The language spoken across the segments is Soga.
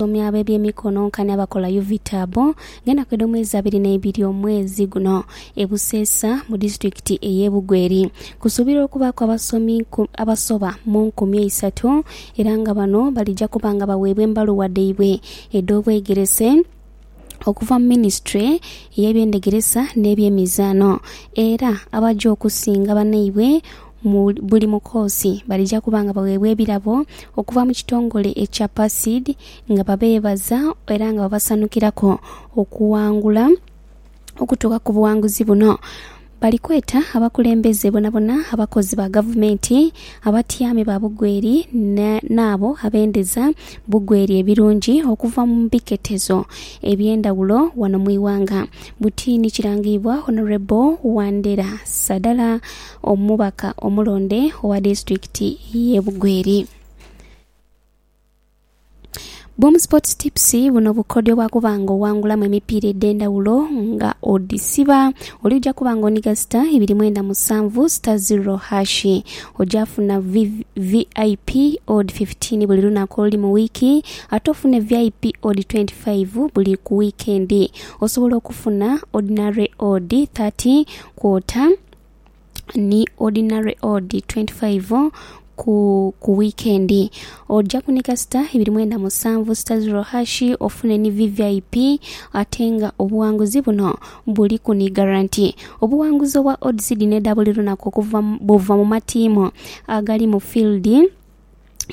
abasomi ab'ebyemikono nkani abakola Uvitabu ng'enaku edh'omwezi abiri n'eibiri omwezi guno e Buseesa mu disitulikiti ey'e Bugweri. Kusuubirwa okubaaku abasomi abasoba mu nkumi eisatu era nga bano balija kuba nga baweebwa embaluwa dhaibwe edh'obwegerese. okuva mu minisitule y'ebyendhegeresa n'ebyemizaano era abaja okusinga banaibwe mu buli mukoosi balija kuba nga bagheebwa ebirabo okuva mu kitongole ekya PACID nga babeebaza era nga babasanukiraku okuwangula okutuuka ku buwanguzi buno. Bali kweta abakulembeze bonabona, abakozi ba gavumenti, abatyaami ba bugweri n'abo abendeza bugweri ebirungi okuva mu biketezo eby'endhawulo wano mu ighanga. Buti ni kirangiibwa Honourable Wandera Sadala omubaka omulonde owa disitulikiti y'e Bugweri. Boom Sports Tips, buno bukodyo bwa kuba nga owangulamu emipiira edh'endhawulo nga odhisiba. Oli oja kuba nga onhiga sita ibiri mwenda musanvu sita ziro hashi. Oja funa vi- VIP odd 15 buli lunaku oluli mu wiiki, ate ofune VIP odd 25 buli ku wiikendi. Osobola okufuna ordinary odd 30, quarter, ni ordinary odd 25 ku ku wikendi. Ojaku ni kasita ibiri mwenda musanvu sita ziro hashi ofune ni VVIP ate nga obughanguzi buno buliku ni guarantee. Obughanguzi obwa odds dhino edha buli lunaku okuva mu buva mu matiimu agali mu field.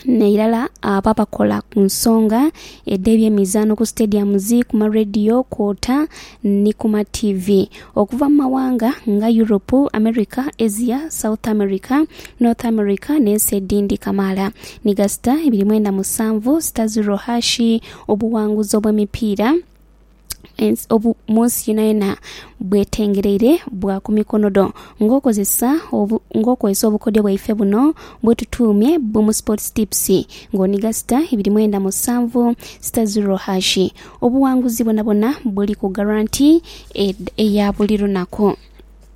nairala abo abakola ku nsonga edh'ebyemizaano ku sitediyamuzi, ku marediyo kwota ni ku mativi okuva mu mawanga nga Europe, America, Asia, South America, North America n'ensi edhindi kamaala ni gasita ebiri mwenda musanvu sita ziro haashi obuwanguzi obw'emipiira mu nsi yonayona bwetengereire bwa ku mikono dho nga okozesa nga okozesa obukodyo bwaife buno bwetutuumye BUM sports tips nga oniga sita ibiri mwenda musanvu sita ziro hashi obuwanguzi bwonabwona buliku garanti eya buli lunaku.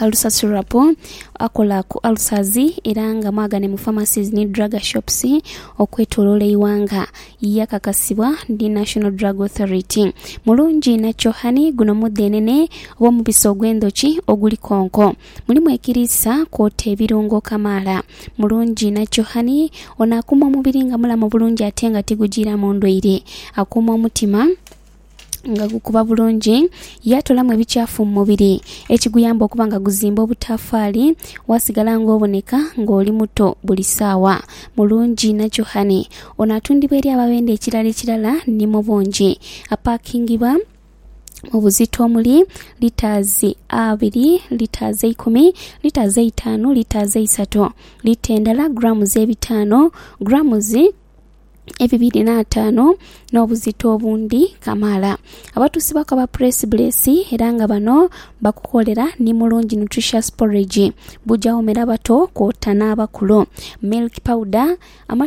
Alusa Syrup akola ku ulcers era nga mwagane mu pharmacies ni drug shops okwetoloola eighanga. Yakakasibwa ni National Drug Authority. Mulungi inha Chohani, guno mudhenene oba omubisi ogw'endhoki oguli konko. Mulimu ekiriisa kwota ebirungo kamaala. Mulungi inha Chohani ono akuuma omubiri nga mulamu bulungi ate nga tigujiiramu ndwaire. Akuuma omutima. nga gukuba bulungi, yaatolamu ebikyafu mu mubiri ekiguyamba okuba nga guzimba obutaafaali waasigala ng'oboneka ng'oli muto buli saawa. Mulungi na Johane. Ono atundibwa eri abo abenda ekirala ekirala ni mu bungi. Apaakingibwa mu buzito omuli litaazi abiri, litaazi eikumi, litaazi eitaanu, litaazi eisatu, lita endala, grammes ebitaano, grammes, ebibiri n'ataanu n'obuzito obundi kamaala. Abatusibaku aba Press Bless era nga bano bakukolera ni Mulungi Nutritious Porridge, bujja womera abato kwota n'abakulu. Milk Powder, amata